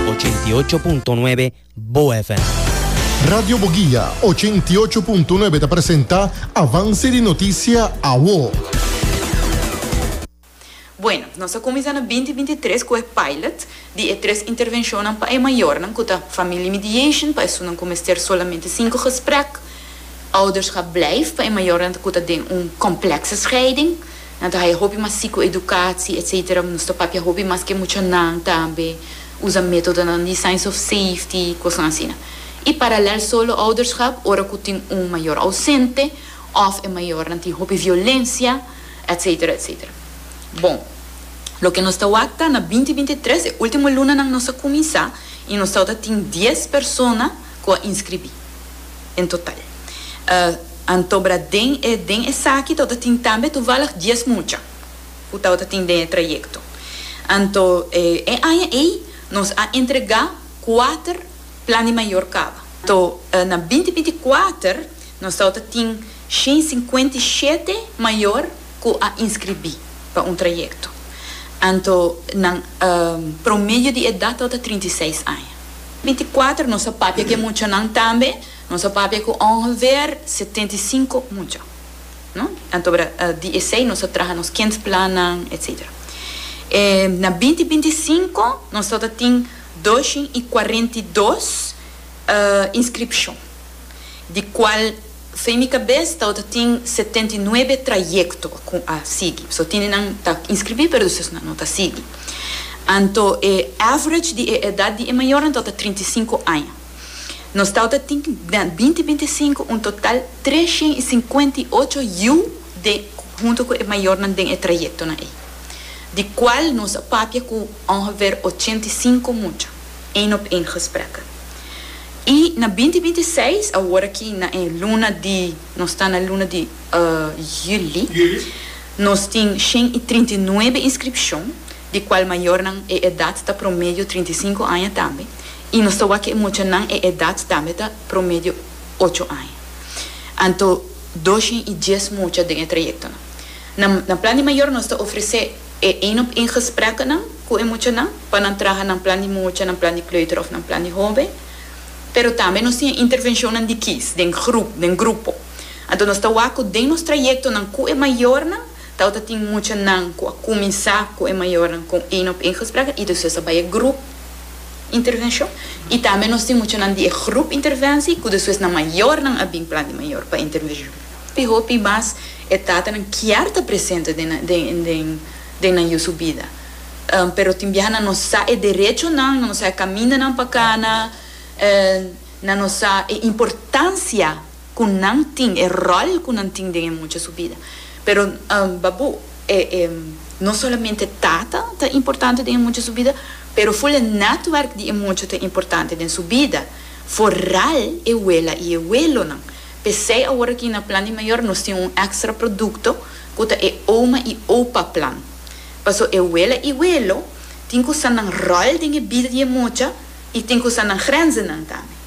88.9 Bo FM. Radio Boguia, ochenta i ocho punto nuebe ta presenta Avance di Noticia Awo. Bueno, nos a cuminsa na binti binti i tres cu e pilot di e tres intervencionnan pa e mayornan cu ta family mediation pa esunnan cu mester solamente cinco gesprek. Ouders ga blijf pa e mayornan cu ta den un complexe scheiding. Nan ta haya hopi mas sikoedukatsi, etc. Nos ta papia hopi mas ke muchanan tambe, usa metodonan di signs of safety, kosnan asina. I paralèl solo ouderschap, ora ku tin un mayor ausente òf e mayornan tin hopi violensia, etc. Etc. Bon, loke nos ta wak ta na binti binti i tres, e último lunanan nos a kuminsá i nos tawata tin dies persona ku a inskribí. en total. Anto bra den e den esaki tabata tin tambe toevallig dies mucha cu tabata tin den e trayecto. Anto e aña ey nos a entrega cuater Plan di Mayor caba. Anto na binti binti cuater nos tabata tin shen y cincuenta y shete mayor cu a inscribi pa un trayecto. Anto nan promedio di edad tabata trinta y seis aña. Binticuater nos a papia cu e muchanan tambe. Nos a papia cu ongeveer setenta i sinku mucha. No? Antobra di esey nos a traha nos kindplannan, etc. E na binti binti i sinku nos tabata tin dos shin i kuarenta i dos inscripcion. di cual so en mi cabes tao ta tin setenta i nuebe trayecto cu a sigui. So tin nan ta inscribi pero despues nan no ta sigui. Anto e average di e edad di e mayornan tao ta trinta i sinku aña. Nos tao ta tin na binti binti i sinku un total tres shen i sinkuenta i ocho yiu den hunto cu e mayornan den e trayectonan ey. Di cual nos a papia cu ongever ochenta i sinku mucha. Eén op Eén gesprekken. I na binti binti i seis, awor aki na e luna di, nos ta na luna di juli, nos tin shen i trinta i nuebe inskripshon, di kual mayornan e edat ta promedio trinta i sinku aña tambe, i nos ta wak e muchanan e edat tambe ta promedio ocho aña. Anto dos shen i dies mucha den e trayektonan. Na na plan di mayor nos ta ofresé. E ein op ein gesprekkenan ku e muchanan pa nan traha nan plan di mucha, nan plan di kleuter òf nan plan di hoben. Pero tambe nos tin e intervenshonnan di kies den grup, den grupo. Anto nos ta wak ku den nos trayektonan ku e mayornan tawata tin muchanan ku a kuminsá ku e mayornan kon ein op ein gesprekkenan i despues a bai e grup intervenshon. I tambe nos tin muchanan di e grup intervensi ku despues nan mayornan a bin plan di mayor pa intervenshon. Di hopi mas e tatanan kier ta presente den nan yu su bida. Pero tin biaha nan no sa e derechonan, nan no sa e kamindanan pa kana, nan no sa e importansia ku nan tin, e ròl ku nan tin den e mucha su bida. Pero babu no solamente tata ta importante den e mucha su bida, pero full e netwerk di e mucha ta importante den su bida, foral e wela i e welonan. P'esei aworakí na Plan di Mayor nos tin un èkstra produkto ku ta e Oma i Opa Plan. Pasó e wela i welo tin ku sa nan ròl den e bil di e mocha i tin ku sa nan grenzennan tambe.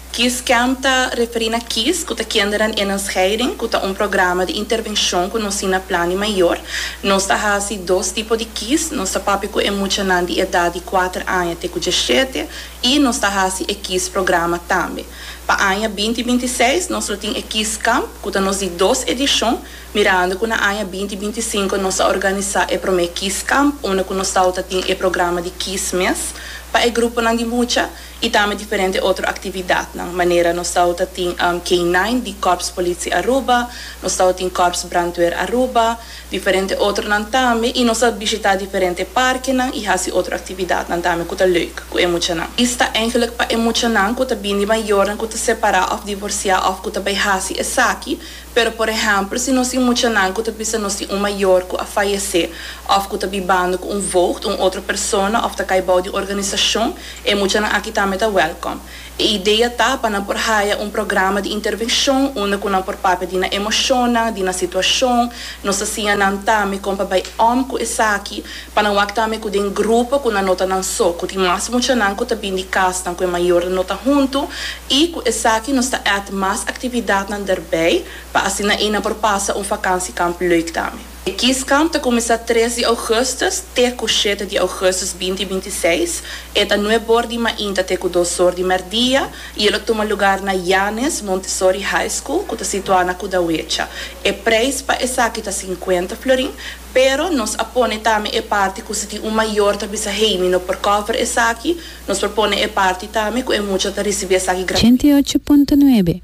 Kiescamp ta referí na kies, ku ta Kinderen innen Scheiding, ku ta un programa di intervenshon ku nos tin na Plan di Mayor. Nos ta hasi dos tipo di kies, nos ta papia ku e muchanan di edat di kuater aña te ku djashete i nos ta hasi e kies programa tambe. Pa aña binti binti i seis nos lo tin e Kieskamp ku ta nos di dos edishon, mirando ku na aña binti binti i sinku nos a organisá e promé Kieskamp unda ku nos tabata tin e programa di kies mes pa e gruponan di mucha i tambe diferente otro aktividatnan manera nos tabata tin K-nine di Kòrspolisie Aruba, nos tabata tin Kòrsbrandweer Aruba. Diferente otronan tambe y nos a bishita diferente parkenan y haci otro actividadnan tambe cu ta leuk cu e muchanan. Is ta engeluk pa e muchanan cu ta bin di mayornan cu ta separa of divorcia of cu ta bay haci esaki, pero por ehempel si nos tin muchanan cu ta bisa nos tin un mayor cu a fayece of cu ta bibando cu un voogd, un otro persona of ta cay bao di un organisacion, e muchanan aki tambe ta welcome. E idea ta pa nan por haya un programa di intervenshon unda ku nan por papia di nan emoshonnan, di nan situashon, nos ta siña nan tambe kon pa bai om ku esaki, pa nan wak tambe ku den grupo ku nan no ta nan so, ku tin mas muchanan ku ta bin di kasnan ku e mayornan no ta huntu i ku esaki nos ta èt mas aktividatnan derbei pa asina ei nan por pasa un vakansikamp leuk tambe. E Kieskamp ta kuminsá tres di ougùstus te ku shete di ougùstus binti binti i seis, e ta nue bor di mainta te ku dos or di mèrdia i e lo tuma lugar na Yanes Montessori High School ku ta situá na Kudawecha. E preis pa esaki ta sinkuenta florin, pero nos a pone tambe e parti ku si tin un mayor ta bisa Heini no por kòver esaki, nos por pone e parti tambe ku e mucha ta risibí esaki gratuito. Ochenta i ocho punto nuebe,